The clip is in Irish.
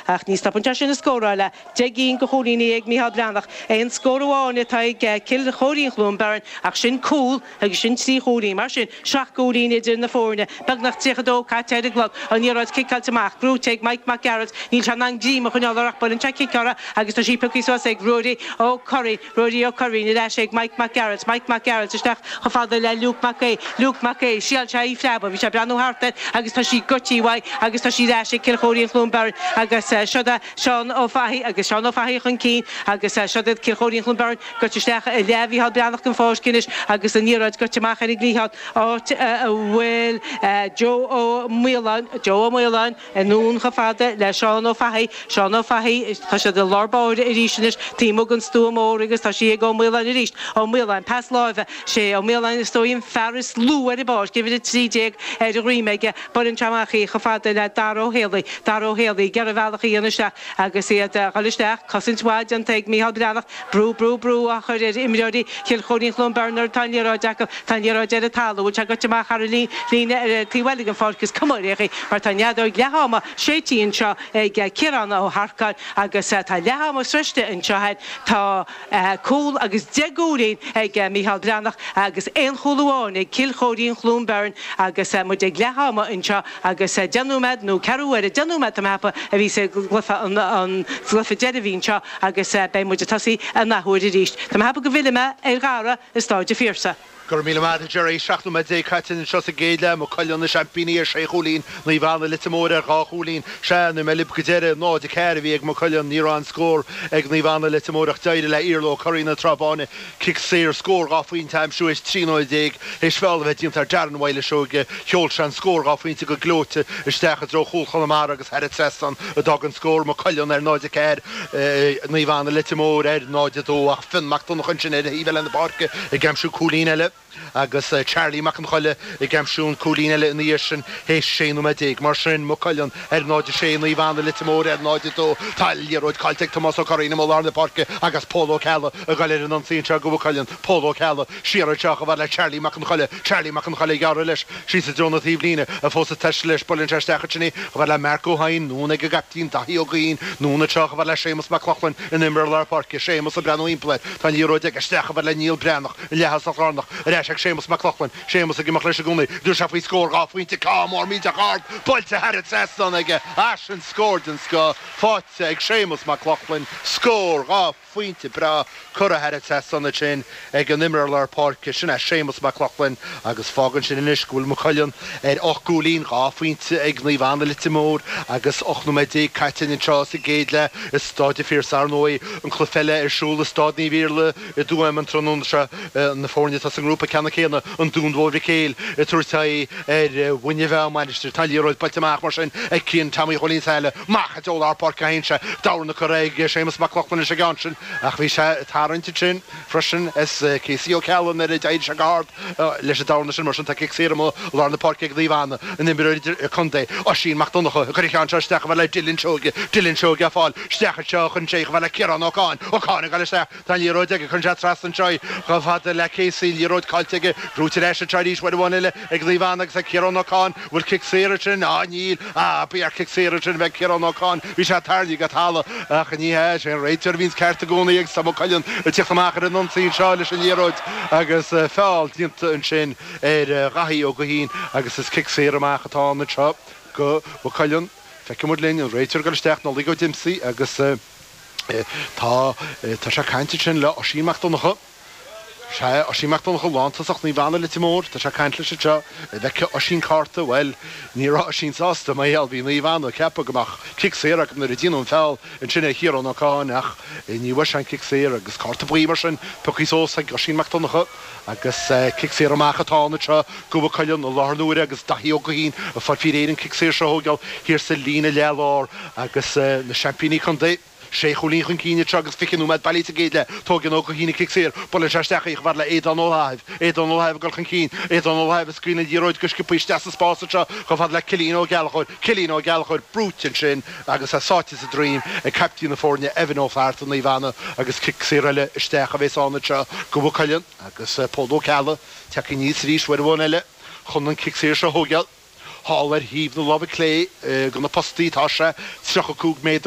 Ach ní stopann sé sin an scóráil deich gcinn de chúilíní ag Micheál Breathnach. Aon scór amháin atá ag Cill Chóirín-Chluain Bheirn ach sin cúl agus sin trí chúilín. Mar sin, seacht gcúilín idir na foirne. Beagnach 30 dó caite ar an gclog. An liathróid ciceáilte amach. Gnóite ag Mike Mac Gearailt. Níl sé in ann greim a choinneáil air ach buaileann sé cic uirthi agus tá sí pioctha suas ag Ruairí Ó Curraoin. Ruairí Ó Curraoin, Ar ais ag Mike Mac Gearailt, Mike Mac Gearailt, Isteach chomh fada le Luke Mac Aoidh, Luke Mac Aoidh, Thriáil sé í phreabadh, bhí sé ag breathnú thart air agus tá sí goite uaidh agus tá sí ar ais ag Cill Chóirín Chluain Beirn agus siod é Seán Ó Fathaigh agus Seán Ó Fathaigh chun cinn agus siod iad Cill Chóirín Chluain Beirn, goite isteach i leath Mhícheál Breathnach den pháirc anois agus an liathróid goite amach ar an gcliathán áit a bhfuil Joe Ó Maoláin, Joe Ó Maoláin. Anonn chomh fada le Seán Ó Fathaigh, Seán Ó Fathaigh, tá siad i lár báire arís anois, taobh amuigh den stua mór agus tá sí ag Ó Maoláin arís, Ó Maoláin, pas láimhe, sé Ó Maoláin is dóigh an fear is lú ar an bpáirc, uimhir 13 ar a dhroim aige, beireann sé amach í chomh fada le Dara Ó Héalaí, Dara Ó Héalaí, ag iarraidh a bhealach a dhéanamh isteach agus iad ag dul isteach, cosaint mhaith déanta ag Micheál Breathnach Brú, brú, brú á chur ar imreoirí Chill Chóirín-Chluain Beirn nuair atá an liathróid acu. Tá an liathróid ar an talamh. An bhfuil sé goite amach thar an líne ar taobh eile den pháirc? Is cuma ar bith é mar tá an fheadóg leath ama séidte anseo ag Ciarán Ó hEarcáin agus tá leath ama sroichte anseo againn. Tá cúl agus deich gcúilín ag Micheál Breathnach agus aon chúl amháin ag Cill Chóirín-Chluain Beirn agus muid ag leath ama anseo. agus deich nóiméad nó ceathrú uaire, deich nóiméad tá mé ag ceapadh a bhí sa gcluife deiridh a bhí anseo agus beidh muid ag tosaí an athuair arís. Tá mé ag ceapadh go bhfillfidh mé ar Dhara i Staid an Phiarsaigh. Go raibh míle maith agat Gerry, seacht nóiméad déag caite anseo sa gcéad leath, Maigh Cuilinn na seaimpíní ar sé chúilín, Naomh Anna, Leitir Móir ar dhá chúilín. Sea, nuair a bhí mé libh go deireadh, 0, 4 a bhí ag Maigh Cuilinn, ní raibh aon scór ag Naomh Anna, Leitir Móir ach d'éirigh le Iarla Ó Curraoin na Trá Báine, Cic Saor, Scór dhá phointe a aimsiú théis trí nóiméad déag théis feall a bheith déanta ar Darren Wylie Seoige, sheol sé an scór dhá phointe go gleoite isteach i dtreo chúl Chonamara agus thar an trasnán a d'fhág an scór, Maigh Cuilinn ar 0-4, Naomh Anna Leitir Móir ar 0-2 ach Fionn Mac Donnchadha ansin ar thaobh eile na páirce ag aimsiú cúilín eile. Agus Charlie Mac an Choille ag aimsiú an chúilín eile ina dhiaidh sin théis 16 nóiméad. Mar sin, Maigh Cuilinn ar 0-6, Naomh Anna Leitir Móir ar 0-2. Tá liathróid caillte ag Tomás Ó Curraoin i mol lár na páirce agus Pól Ó Ceallaigh ag goil ar an ionsaí anseo do Mhaigh Cuilinn. Pól Ó Ceallaigh, siar anseo, chomh fada le Charlie Mac an Choille. Charlie Mac an Choille ag gearradh leis, síos i dtreo na taobhlíne, é fós ag taisteal leis. Buaileann sé isteach ansin é, chomh fada le Marc Ó hEidhin, anonn ag an gcaiptín, Daithí Ó Gaoithín. Anonn anseo, chomh fada le Séamus Mac Lochlainn, an imreoir lár páirce. Séamus ag breathnú thimpeall air. Tá an liathróid aige. Isteach, chomh fada le Niall Breathnach. Leathshúil sa Ghraonach ar ais ag Séamus Mac Lochlainn, Séamus ag imeacht leis i gcónaí. Tabharfaidh sé faoi scór dhá phointe ceann mór millteach ard buailte thar an trasnán aige. Ah sin scór den scoth faighte ag Séamus Mac Lochlainn, scór dhá phointe breá curtha thar an trasnán ansin ag an imreoir lár páirce sin é Séamus Mac Lochlainn agus fágann sin anois go bhfuil Maigh Cuilinn ar ocht gcúilín, dhá phointe ag Naomh Anna Leitir Móir agus 18 nóiméad caite anseo sa gcéad leath i Staid an Phiarsaigh. Ar ndóigh an cluiche eile ar siúl i Staid Naomh Iarlaith, I dTuaim an tráthnóna seo, na foirne atá sa ngrúpa ceannann céanna, An Dún Mór Mhic Éil ag tabhairt aghaidh ar Mhuine Mheá, Mainistir. Tá an liathróid buailte amach mar sin ag Cian Tommy Chóilín Saile amach i dtreo lár páirce féin sé d'amharc na curaidh ag Séamus Mac Lochlainn leis an gceann sin ach bhí sé ag tarraingt ansin freisin as Casey Ó Ceallaigh nuair a d'éirigh sé go hard leis don cheann sin mar sin tá cic saor amuigh i lár na páirce ag Naomh Anna. An imreoir idir-contae, Oisín Mac Donnacha ag cur an cheann seo isteach chomh fada le Dylan Seoige. Dylan Seoige ag fáil isteach anseo cuireann sé chomh fada le Ciarán Ó Cadháin. Ó Cadháin ag gabháil isteach. Tá an liathróid aige, cuireann sé trasna anseo í, chomh fada le Casey, an liathróid caillte aige, buaite ar ais anseo arís, uair amháin eile ag Naomh Anna agus ag Ciarán Ó Cadháin, an bhfuil cic saor ansin? Á níl, á ba cheart cic saor ansin a bheith ag Ciarán Ó Cadháin, bhí sé tarraingthe go talamh ach ní hea, is é an réiteoir a bhíonns ceart i gcónaí agus tá Maigh Cuilinn ag tíocht amach ar an ionsaí anseo leis an liathróid agus feall déanta ansin ar Dhaithí Ó Gaoithín agus is cic saor amach atá ann anseo go Mhaigh Cuilinn, feicfidh muid linn, an réiteoir ag dul isteach, Nollaig Ó Díomasaigh agus. Tá, tá sé ag caint ansin le Oisín Mac Donncha. Sea, Oisín Mac Donncha, lántosach Naomh Anna Leitir Móir, tá sé ag caint leis anseo. An bhfeicfidh Oisín cárta? Bhuel, ní raibh Oisín sásta mar gheall, bhí Naomh Anna ag ceapadh go mbeadh cic saor acu nuair a déanadh an feall ansin ar Chiarán Ó Cadháin ach ní bhfuair sé an cic saor agus cárta buí mar sin, pioctha suas ag Oisín Mac Donncha. Agus cic saor amach atá ann anseo, go Mhaigh Cuilinn i láthair na huaire agus Daithí Ó Gaoithín ag fáil faoi réir an cic saor seo a thógáil thiar sa líne leath lár agus na seaimpíní contae sé chúilín chun cinn anseo agus 20 nóiméad bailithe sa gcéad leath. Tógann Ó Gaoithín an cic saor, buaileann sé isteach í chomh fada le Aodán Ó Laithimh. Aodán Ó Laithimh ag dul chun cinn, Aodán Ó Laithimh ag scaoileadh an liathróid go sciobtha isteach sa spás anseo chomh fada le Cillian Ó Gallchóir. Cillian Ó Gallchóir, brúite ansin. Agus é sáite sa droim ag caiptín na foirne Evan Ó Flatharta, Naomh Anna, agus cic saor eile isteach a bhéas ann anseo go Mhaigh Cuilinn agus Pól Ó Ceallaigh tagtha aníos arís uair amháin eile chun an cic saor seo a thóigeáil. Thall ar thaobh na láimhe clé de na postaí tá sé, 35 méadar,